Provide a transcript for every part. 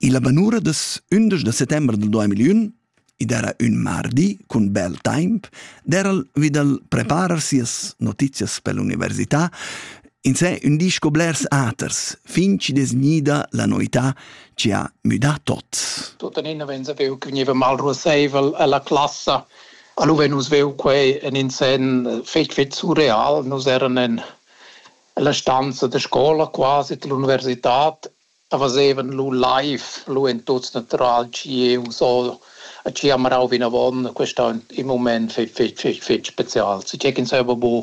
Illa banura das ündesch da settember dal 2001, id era ün mardi cun bel taimp, dera'l vi da'l preparer sias notizias per l'università, insè ün di sco blers aters, fin chi'd es gnida la noità chi ha müdà tots. Tuttenina vegn veu chi gniva mal ruossaivel a la classa. Alura nus veu quai in in sen fich fich surreal. Nus eran in la stanza da scola quasi d'l'università A fazevan lu live, lu ein tuts natural tgius o a tgi ha marau vinavon. Quest ei in mument fetg, fetg, fetg, fetg special. Se tgei ch'ins haver bu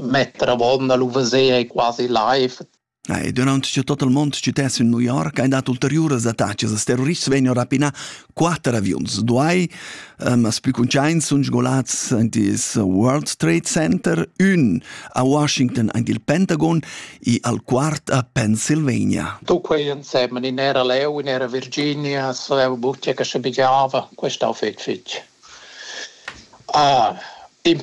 metter avon a lu veser ei quasi live. E durant che tot il mund stutess in New York ein dat ulteriuras attacas als terrorists vegn rapinà quater aviuns duai um, as plü cuntschaints sun sgolats in dis World Trade Center, ün a Washington aint il Pentagon e al quart a Pennsylvania. Tu quei insemen in era Leu, in era Virginia, so butia che sche bigiava, quest'au fetg fetg. Ah, in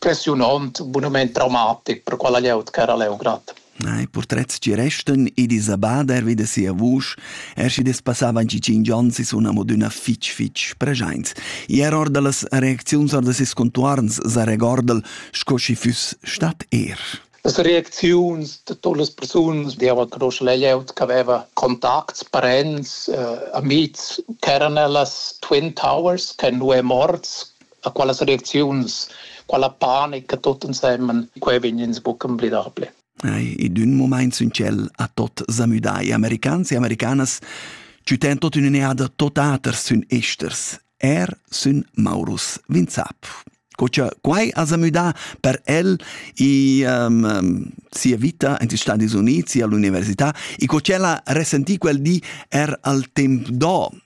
impressiunont, bunument traumatic per quella glieud ch'era a Leongrad. I purtrets ci restan ed Isabader vi da sia vusch, er schi despassavan ci cinc ons e sun amo d'üna fich fich preschaints. Er or da las reacziuns or da ses contuorns sa regorda'l sco schi füss stat er. Las reacziuns da totas las persunas dievan conoscher la glieud ch'aveva contacts, parents, eh, amihs, ch'eran ellas Twin Towers, che nu è morts, a qualas reacziuns, quala panica tot ensemen, quei vegn ins buca emblidable. Ed un moment sun tschel a tot zamüdai. Americans e americanas ci ten tot in un'eada tot aters sun esters. Er sun Maurus Vinzap. Co cha quai ha zamüdà per el i um, um, sia vita in Stati Uniti, all'università, e co ch'ella ha resentì quel di er al temp do,